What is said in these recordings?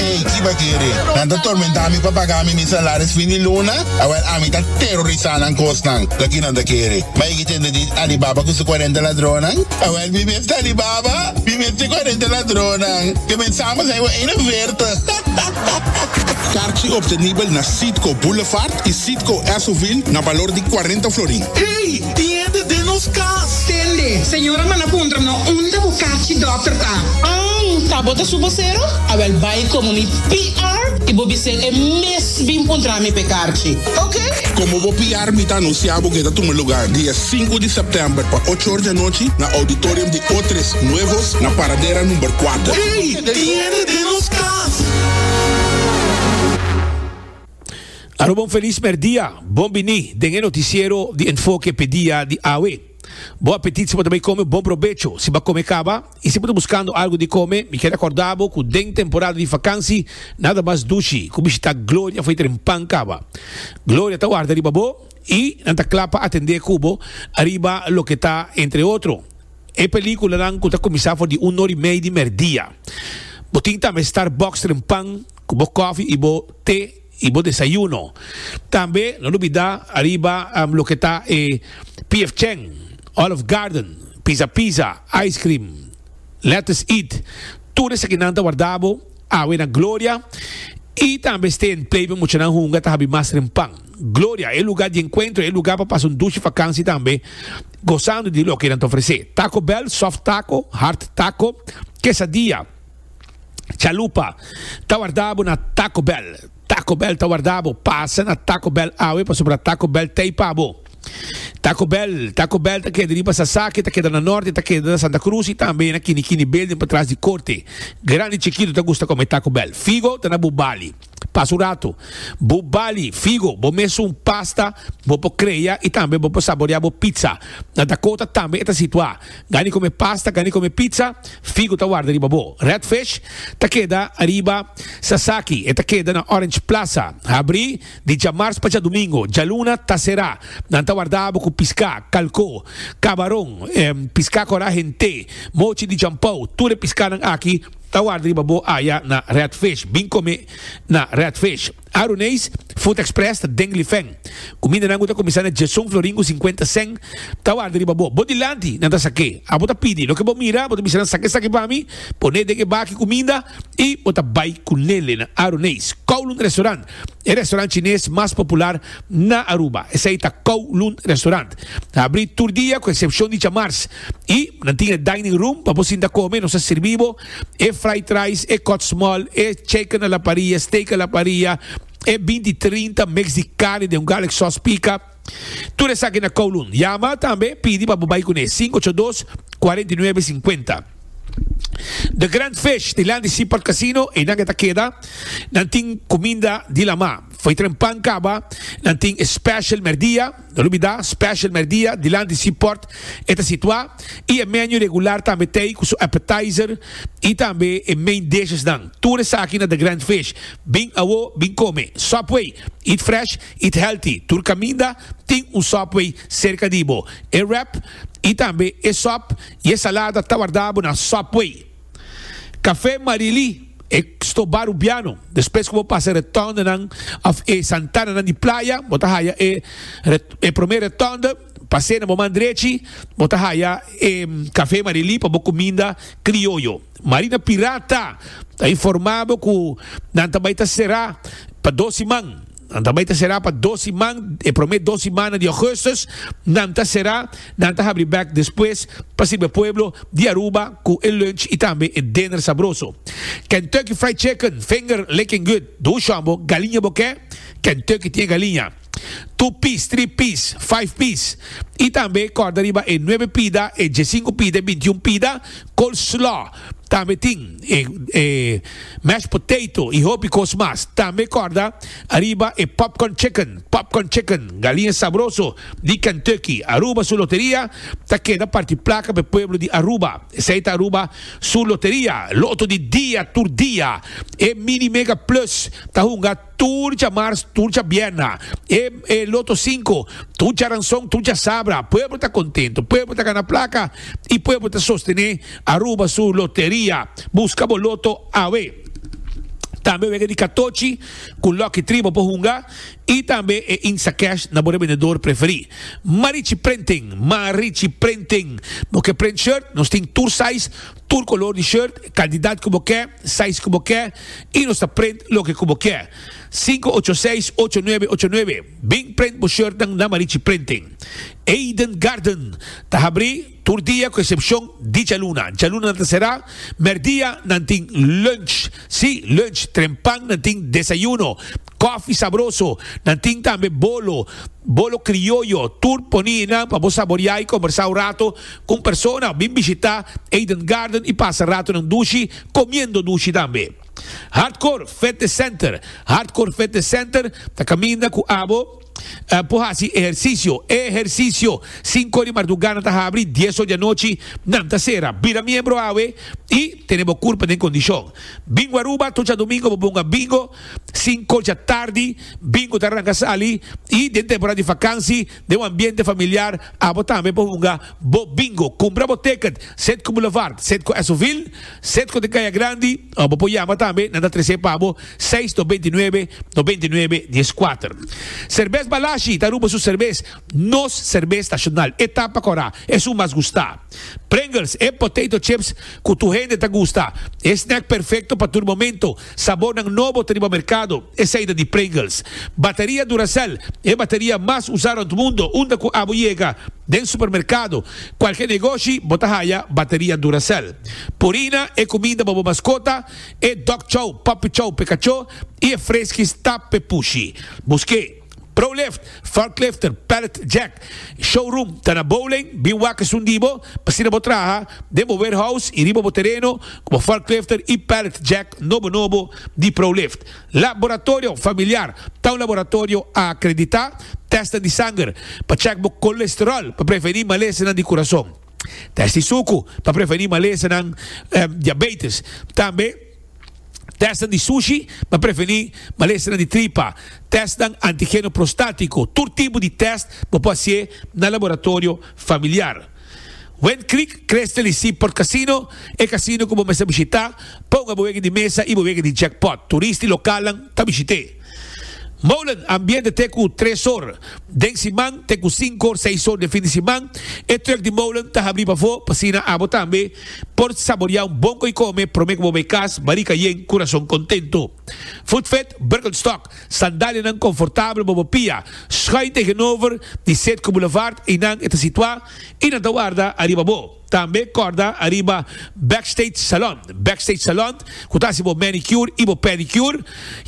Ey kiba kere nan ta tormentá mi pa pagá mi mi salaris fin di luna? Awel ami ta terorisá nan kosnan loke nan ta kere. Mei ki tende di Alibaba ku su kuarenta ladronnan? Awel mi mes ta Alibaba, mi mes ta e kuarenta ladronnan. Ke mensá mas ei bo eina verta. Karchi obtenibel na Citgo Boulevard y Citgo Esso-ville na balor di cuarenta florin. Ey! Tiende den nos cas! Tende! Señora manda puntra no unda bo karchi dokter ta. Ang! Ta bo ta su bosero? Awel bay como mi PR y bo bis'é e mes bin puntra mi p'e karchi. Oke? Como bo PR mi ta anuncia bo ke ta tuma lugar di e sinku di september pa ocho or di anochi na auditorium di Otres Nuevos na Paradera number cuater. Ey! Aruba un felis mèrdia! Bon bini den e notisiero di Enfoke p'e dia di awe. Bo apetit si bo ta bai kome bon probecho si bo a kome kaba i si bo ta buskando algu di kome mi kier akorda bo ku den temporada di fakansi nada mas dushi ku bishitá Gloria fo'i tren pan kaba. Gloria ta warda riba bo i nan ta kla pa atendé ku bo ariba loke ta entre otro E peliculanan cu ta cuminsa for di un or y mei di merdia. Bo tin tambe Starbucks tren pan cu bo coffee y bo te y bo desayuno. Tambe no lubida ariba loke ta e PF Chang, Olive Garden, Pizza Pizza, Ice Cream, Lettuce Eat. Tur esakinan ta warda bo awe na gloria y tambe stay and play pa muchanan hunga ta habi mas tren pan. Gloria, e lugar di encuentro, e lugar pa pasa un dushi vakansi tambe, gozando di loke nan ta ofrece. Taco Bell, soft taco, hard taco, quesadilla, chalupa, ta warda bo na Taco Bell. Taco Bell ta warda bo. Pasa na Taco Bell awe pasobra Taco Bell ta ei pa bo. Taco Bell, Taco Bell ta keda riba Sasaki, ta keda na norte, ta keda na Santa Cruz y tambe na Kini Kini Building patras di Corte. Grandi chikito ta gusta come Taco Bell. Figo ta na Bubali. Pas un ratu, bo bali figo, bo mes un pasta, bo por crea y tambe bo por saborea bo pizza. Na Dakota tambe e ta situa. Gani come pasta, gani come pizza, figo ta warda riba bo. Red Fish ta keda ariba Sasaki, e ta keda na Orange Plaza. Habri di djamars pa djadumingo, djaluna ta cera. Nan ta warda bo cu pisca, calco, cabaron, pisca cora hent'e, mochi di djampou, tur e piscanan aki, Ta warda riba bo aya na Redfish, bin come na Redfish. Aruneis Food Express ta den Lifen. Cumindanan cu ta cuminsa na Jason Florin cu cincuenta cen ta warda riba bo. Bo dilanti nan ta sake. Abo ta pidi loke bo mira, bo ta bisa nan sake esaki pa mi, pone den e baki cuminda y bo ta bay cunele na Aruneis Kowloon Restaurant. E restaurant chines mas popular na Aruba, esei ta Kowloon Restaurant. Ta abri tur dia ku esepshon di djamars i nan tin e dining room pa bo sinta kome. Nos a sirbi bo e fried rice, e kòtsmòl, e chicken a la parrilla, steak a la parrilla, e binti trinta mix di karni den un garlic sòs pika. Tur esaki na Kowloon. Yama tambe pidi pa bo bai ku ne, sinku ocho dos, kuarenta i nuebe, sinkuenta. The Grand Fish di Landy Seaport Casino, einan ke ta keda. Nan tin kuminda di lamá. Fo'i tren pan kaba, nan tin e special mèrdia, no lubidá, special mèrdia di Landy Seaport, e ta situá, i e menu regular tambe t'ei ku su appetizer i tambe e main dishes nan. Tur esaki na The Grand Fish. Bin awo, bin kome. Subway, eat fresh. Eat Healthy, Tur kaminda tin un Subway serka di bo. E wrap i tambe e sòp i e salada ta wardá bo na Subway. Kafé Marilí, E stobá rubiano. Despues ku bo pasa e retòndenan òf e santananan di playa, bo ta haya e e promé retònde. Pas'é na bo man drechi bo ta haya e Kafé Marilí pa bo kuminda krioyo. Marina Pirata ta informá bo ku nan ta bai ta será pa dos siman. Nan ta bai ta será pa dos siman, e promé dos simana di Augustus nan ta será, nan ta habri bek despues pa sirbi e pueblo di Aruba cu e lunch y tambe e dinner sabroso. Kentucky Fried Chicken finger licking good, dun shonbo galiña bo ke? Kentucky tin e galiña two piece, three piece, five piece y tambe corda riba e nuebe pida, e diesinco pida, e bintiun pida, coleslaw. Tambe tin e e mashed potato y hopi cos mas. Tambe corda ariba e popcorn chicken, popcorn chicken, galinha sabroso di Kentucky. Aruba su loteria ta keda parti placa p'e pueblo di Aruba. Esey ta Aruba su loteria, loto di dia tur dia. E mini mega plus ta hunga. Tur djamars, tur djabierna, e e loto sinku, tur djaranson, tur djasabra, pueblo ta kontentu, pueblo ta gana plaka i pueblo ta sostené Aruba su loteria. Buska bo loto awe. Tambe wega di katochi ku Lucky Tree bo por hunga i tambe e Instacash na bo rebendedor preferí. Marichi Printing, Marichi Printing, bo ke print shirt, nos tin tur size, Tur color di shirt, cantidad cu bo ke, size cu bo ke y nos ta prent loke cu bo kier. Sinku ocho seis ocho nuebe ocho nuebe Bin prent bo shirtnan na Marichi Printing. Eden Garden ta habri tur dia cu excepcion Dichaluna. Djaluna nan ta cera. Merdia nan tin lunch. Si, lunch. Trempan nan tin desayuno. Coffee sabroso. Nan tin tambe bolo. Bolo crioyo. Tur poni enan pa bo saboria y conversa un rato. Cu un persona a bin bishita Eden Garden y pasa ratonan dushi comiendo dushi tambe. Hardcore Fitness Center Hardcore Fitness Center ta caminda cu abo por haci ehercicio. Ehercicio! Cinco di marduga nan ta habri, dies ora di anochi nan ta cera. Bira miembro awe y tene bo curpa den condicion. Bingo Aruba Tocha domingo bo bunga bingo. Cinco dja tardi bingo ta arranca sali y den temporada di vakansi. den un ambiente familiar, abo tambe por hunga bo bingo. Cumpra bo ticket, sed cu Boulevard, sed cu Esovil, sed cu den Caya Grandi, of bo por yama tambe na ta trece pa bo seis no veintinuebe no veintinuebe diezcuater. Cerbes Balashi ta rumbo su cerbes, nos cerbes nacional, e tapa cora, e su mas gusta. Pringles, e potato chips cu tur hende ta gusta, e snack perfecto pa tur momento. Sabornan nobo ta riba merkado, esei ta di Pringles. Bateria Duracell, e bateria mas usá rònt mundu, unda ku abo yega den supermerkado, kualke negoshi bo ta haya bateria Duracell. Purina, e kuminda pa bo maskota, e dog chow, puppy chow p'e kachó i e freskis tap p'e pushi. Busk'é! Prolift, forklifter, pallet jack, showroom ta na bowlane, bin wak esun di bo, p'asina bo traha den bo warehouse i riba bo tereno ku bo forklifter i pallet jack nobo nobo di Prolift. Laboratorio Familiar, ta un laboratorio akreditá, tèsta di sanger pa chèk bo kolesteròl pa prevení malesanan di kurason, tèst di suku pa prevení malesanan diabetes, tambe. Tèstnan di sushi pa prevení malesnan di tripa, tèstnan antigeno prostático, tur tipo di tèst bo por hasié na laboratorio familiar. Wind Creek Crystal y Seaport Casino, e casino cu bo mester bishitá, ponga bo wega di mesa y bo wega di jackpot. Turista y localnan ta bishit'é. Molen ambiente te ku tres or den siman te ku sinku or seis or den fin di siman. E truk di Molen ta habrí pafó pa asina abo tambe por saboreá un bon koi kome promé ku bo bai kas, barika yen, kurason kontentu. Voetvet, Birkenstock, sandalianan konfortabel bo bo pia, schuin tegenover di Zuidkoebulevaart einan e ta situá i nan ta warda ariba bo. Tambe kòrda ariba Backstage Salon. Backstage Salon ku ta hasi bo manicure i bo pedicure.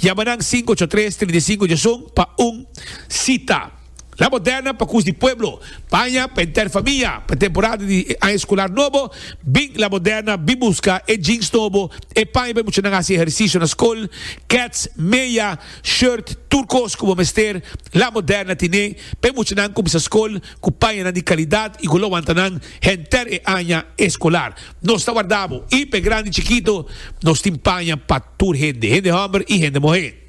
Yama nan sinku ocho tres trinta i sinku djesun pa un sita. La Moderna pa kus di pueblo. Paña pa henter famia pa e temporada di e aña eskular nobo. Bin La Moderna bin buska e jeans nobo, e paña pa e muchanan hasi ehersisio na skol, kets, meya, shirt, tur kos ku bo mester La Moderna tine pa e muchanan kuminsá skol. cu pañanan di calidad y cu lo wanta nan henter e aña escolar. Nos ta warda bo y p'e grandi chikito nos tin paña pa tur hende, hende homber y hende muhe.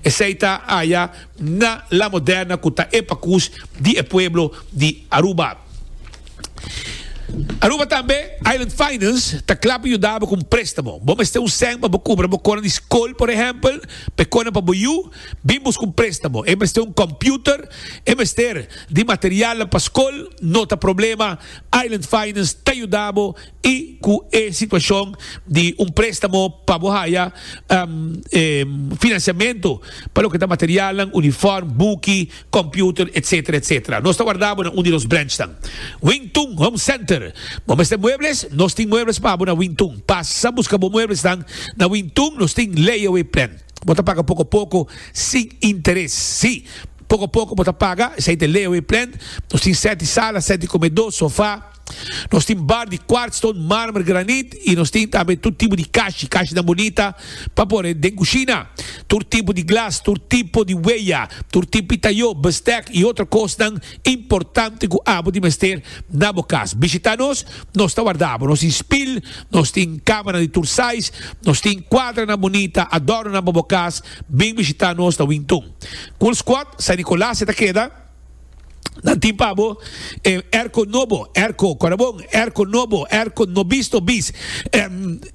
Esey ta aya na La Moderna cu ta e pacus di e pueblo di Aruba. Aruba tambe Island Finance ta cla pa yuda bo cu un prestamo. Bo mester un cen pa bo cubra bo conan di scol, por ehempel, p'e conan pa bo yu. Bin bus cu prestamo. E mester un computer, e mester di materialnan pa scol, no ta problema, Island Finance ta yudabo y cu e situacion di un prestamo pa bo haya financiamento pa loke ta materialnan, uniform, buki, computer, etc. Etc. Nos ta wardabo na un di nos branchnan. Wing Tun Home Center. Bo mester muebles? Nos tin muebles pa bo na Wing Tun. Pasa busca bo mueblesnan na Wing Tun, nos tin layaway plan. Bo ta paga poko poko sin interes. Sí, poko poko bo ta paga. Esei ta e layaway plan. Nos tin sèti sala, sèti komedó, sofá. Nos tin bar di kwartstone, mármer, granit i nos tin tambe tur tipo di kashi, kashinan bunita pa por e den kushina. Tur tipo di glas, tur tipo di weya, tur tipo di tayó, bèstèk i otro kosnan. Importante ku abo tin mester na bo kas. Bishitá nos, nos ta warda abo. Nos tin spil, nos tin kámara di tur sais, nos tin kuadranan bunita, adornonan pa bo kas. Bin bishitá nos na Wington. Cool Squad, San Nicolas e ta keda. Nan tin pa bo e airco nobo, airco, kòrda bon, airco nobo, airco no bis no bis.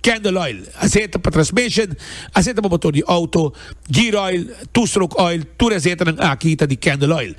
Candle oil, aseta pa transmission, aseta pa motor di auto, gear oil, two stroke oil, tur e asetanan aki ta di Candle oil.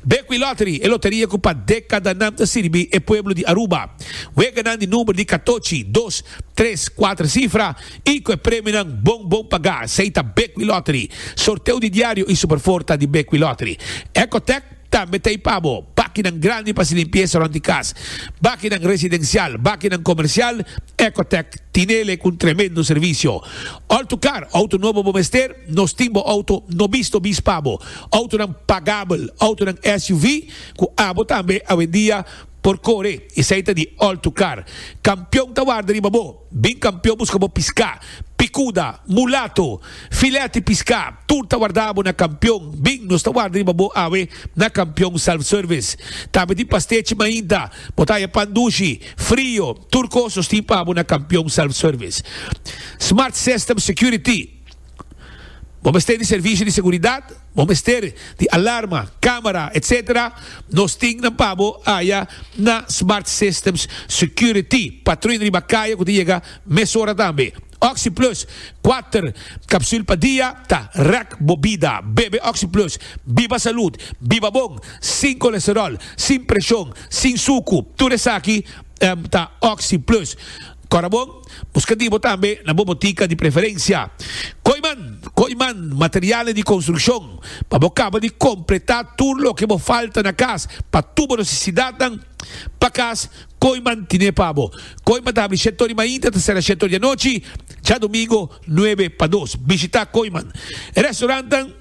Bekwee Lottery, e loteria ku pa dekadanan ta sirbi e pueblo di Aruba. Weganan di number di katochi, dos, tres, kuater sifra i ku e premionan bon bon pagá, sei ta Bekwee Lottery. Sorteo di diario i Superforta di Bekwee Lottery. Ecotec. Tambe ta e pabo, bakinan grandi pa hasi limpiesa rond di kas, bakinan residensial, bakinan komersial, Ecotec tinele ku un tremendo servisio. Altu kar, outo nobo bo mester, nos tin bo outo no bisto bis pabo, outonan pagabel, outonan SUV ku abo tambe awendia por kore, esei ta di altu kar. Kampion ta warda riba bo. Bin kampion buska bo piská, pikuda, mulato, filèt i piská, tur ta wardá bo na kampion. Bin, nos ta warda riba bo awe na kampion self-service. Tambe tin pastechi mainta, bo ta haya pan dushi, frio, tur kos nos tin pa bo na kampion self-service. Smart System Security, Bo mester di servisio di seguridat, bo mester di alarma, camera, etc. Nos tin nan pa bo aya na Smart Systems Security, patruin riba kaya cu ta yega mesora tambe. OxyPlus, kuater capsul pa dia ta rek bo bida. Bebe OxyPlus, biba salud, biba bon, sin colesterol, sin presion, sin sucu, tur esaki ta OxyPlus. Cora bon? Buska di bo tambe na bo botica di preferencia. Koiman, Koiman Materialen di Construccion, pa bo caba di completa tur loke bo falta na cas pa tur bo necesidadnan pa cas, Koiman tine pa bo. Koiman ta habri shete ori mainta ta sera shete ori anochi, djadomingo nuebe pa dos. Bishita Koiman. E restaurantnan.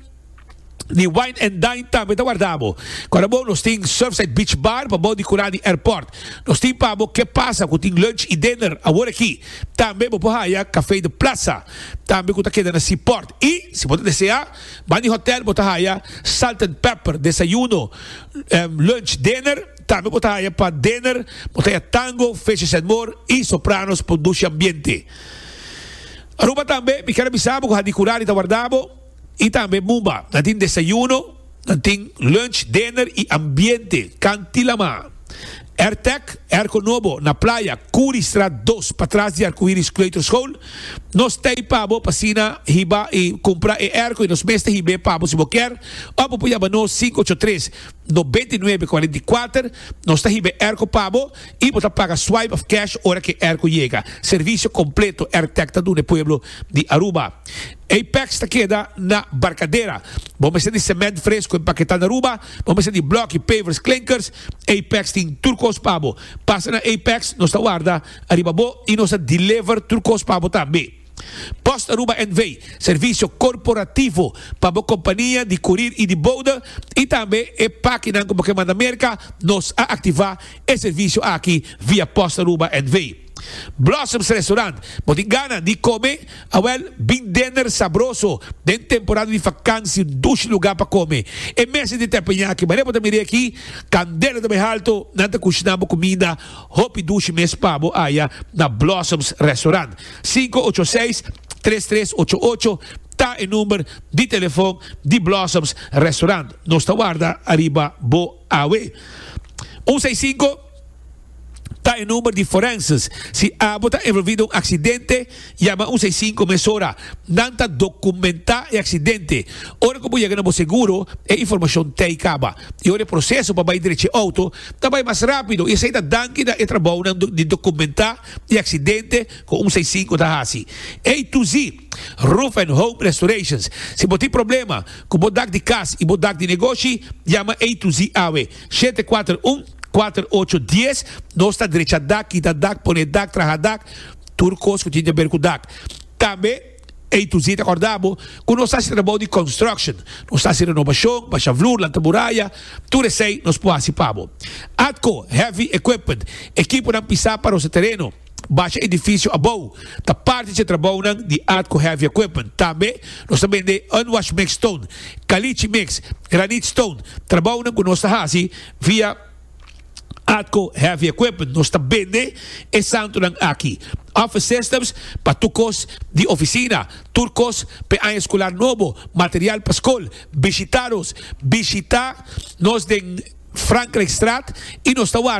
di Wine and Dine tambe ta warda bo. Kor abo nos tin Surfside Beach Bar pabou di kura di airport. Nos tin pa bo ke pasa ku tin lunch i dinner awor aki. Tambe bo por haya Café de Plaza tambe ku ta keda na Seaport. I si bo ta desea ban di hotel bo ta haya Salt and Pepper desayuno, lunch, dinner. Tambe bo ta haya pa dinner bo ta haya Tango, Fishes and More i Sopranos pon dushi ambiente. Aruba tambe mi ker a bisa bo ku Hadi Kurari ta warda bo. Y tambe Mumba. Nan tin desayuno, nan tin lunch, dinner y ambiente Kantilamá. Airtec, Airco Nobo, na Playa, Curi Straat dos, patras di Arcoiris Kleuterschool. Nos ta ei pa bo pa asina hiba y cumpra e airco y nos mes ta hib'é pa bo si bo kier. Of bo por yama nos cinco ocho tres noventa y nuebe cuarenta y cuater. Nos ta hib'é airco pa bo y bo ta paga swipe of cash ora cu e airco yega. Servicio completo Airtec ta duna e pueblo di Aruba. Apex ta keda na Barcadera. Bo mester di cement fresco en paqueta na Aruba, bo mester di bloki, pavers, clinkers. Apex tin tur cos pa bo. Pasa na Apex, nos ta warda ariba bo y nos ta deliver tur cos pa bo tambe. Post Aruba NV, servicio corporativo pa bo compania di curir y di bouda y tambe e pakinan cu bo ke manda Merca, nos a activa e servicio aki via Post Aruba NV. Blossoms Restaurant, bo tin gana di come? Awel, bin dinner sabroso den temporada di vakantie, dushi lugar pa come. E mesa di tepenyaki, marea bo ta mira aki, candela ta bay halto, nan ta cushina bo cuminda hopi dushi mes pa bo aya na Blossoms Restaurant. Sinku ocho seis, tres tres ocho ocho ta e number di telefon di Blossoms Restaurant. Nos ta warda ariba bo awe. Un seis sinku. ta e number di forenses. Si abo ta envolvi den un aksidente, yama un seisinko mesora. Nan ta dokumentá e aksidente. Ora ku bo yega na bo seguro, e informashon t'ei kaba. I ora e proseso pa bai derechi e outo ta bai mas rápido i esei ta danki na e trabounan di dokumentá e aksidente ku un seisinko ta hasi. A to Z, Roof and Home Restorations. Si bo tin problema ku bo dak di kas i bo dak di negoshi, yama A to Z awe. Shete kuater un kuater ocho dies nos ta drecha dak kita dak pone dak traha dak tur kos ku tin ta ber ku dak tambe ey tu si ta korda bo ku nos hasi trabou di construction nos hasi renobashon basha vloer lanta muraya tur esey nos por hasi pa bo atco heavy equipment ekiponan pisa pa rosa tereno. Basha edifisio abou ta parti dje trabounan di Atco Heavy Equipment. Tambe nos ta bende unwash mix stone, caliche mix, granite stone, trabounan cu nos ta haci via Atco Heavy Equipment. Nos ta bende e santonan aki, office systems pa tur cos di oficina, tur cos p'e aña scolar nobo, material pa scol. Bishita nos, bishita nos den Frankrijkstraat y nos ta warda.